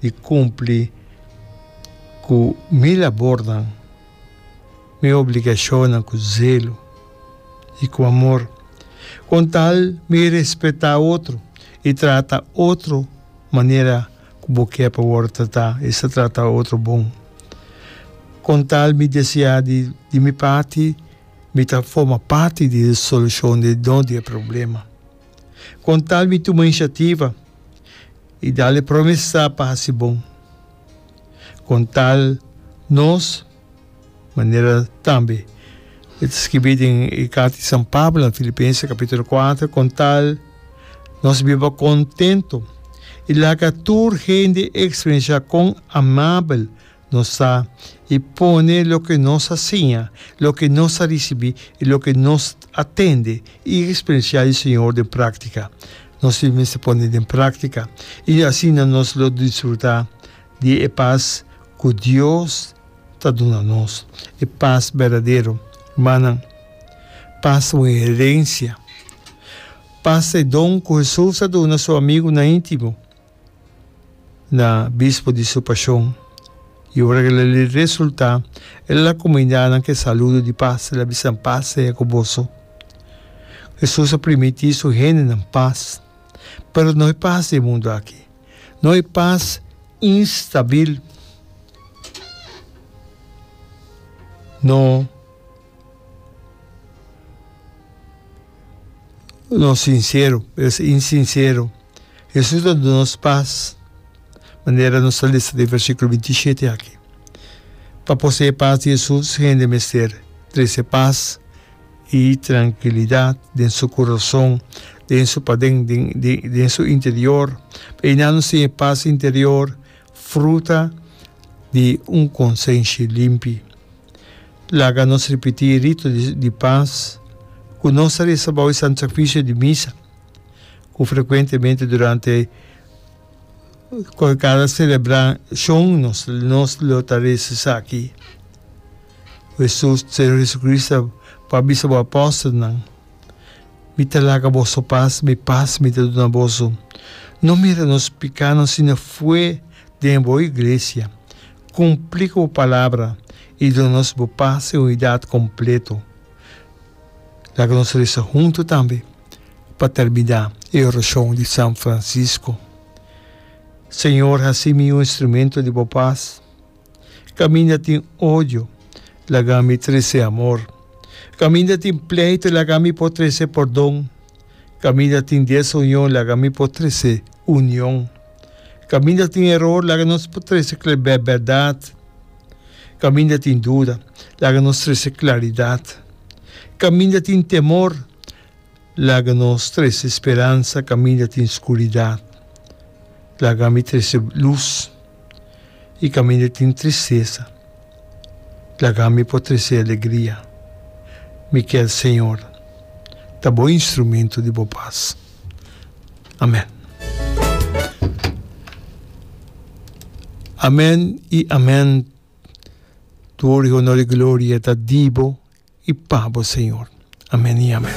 di cumpli cu mi labornan, mi obligacionnan cu zelo y cu amor, con tal mi respeta otro y trata otro manera cu bo kier pa worde trata, esa trata otro bon. Con tal mi desea di di mi parti mi ta forma parti di e solucion, no di e problema. Con tal mi tuma iniciativa. I dale promesa pa hasi bon, con tal nos manera tambe. E ta skibi den e carta di San Pablo na Filipense capitulo kuater, con tal nos biba contento i laga tur hende experiencia con amabel Nos ta y pone loke nos a siña, loke nos a ricibi y loke nos a tende y experiencia di Señor den practica. Nos tin mester pone den practica y asina nos lo disfruta di e paz cu Dios ta duna nos, e paz berdadero. Rumannan, paz ta un herencia. Paz ta e don cu Jesus a duna su amigunan intimo. na bispo di su pashon. I ora ku el a lei resultá, el a la komunidadnan ku e saludo di pas, el a bisa, Pas seya ku boso. Hesus a primiti su hendenan pas, pero no e pas di e mundu aki, no e pas instabil, no. No sinsero, pero si insinsero. Hesus ta duna nos pas, manera nos ta lesa den versikulo binti shete aki. Pa posee e pas di Hesus, hende mester trese pas i trankilidat den su kurason, den su paden, den su interior. I nan nos tin e pas interior, fruta di un konsenshi limpi. Laga nos ripití e rito di pas ku nos a resa bou e Santu Sakrisio di Misa, ku frekuentemente durante kada selebrashon nos nos lo ta resa esaki, Jesus, Señor Hesukristu a bisa bo apòstelnan, Mi ta laga boso pas, mi pas mi ta duna boso. No mira nos pikánan, sino fe den bo Iglesia. Cumpli cu bo palabra y duna nos bo paz y unidad completo. Laga nos reza hunto tambe pa termina e oracion di San Francisco, Señor, haci mi un instrumento di bo paz. Caminda tin odio, laga mi trece amor. Caminda tin pleito, laga mi por trece pordon. Kaminda tin dies union laga mi por trese union. Kaminda tin eror laga nos por trese klebè bèrdat. Kaminda tin duda laga nos trese klaridat. Kaminda tin temor laga nos trese speransa kaminda tin skuridat laga mi trese lus i kaminda tin tristesa. Laga mi por trece alegria. Mi kier Señor ta bo instrumento di bo paz. Amen. Amen y amen Toer y honor y gloria ta di bo y pa bo Señor. Amen y amen.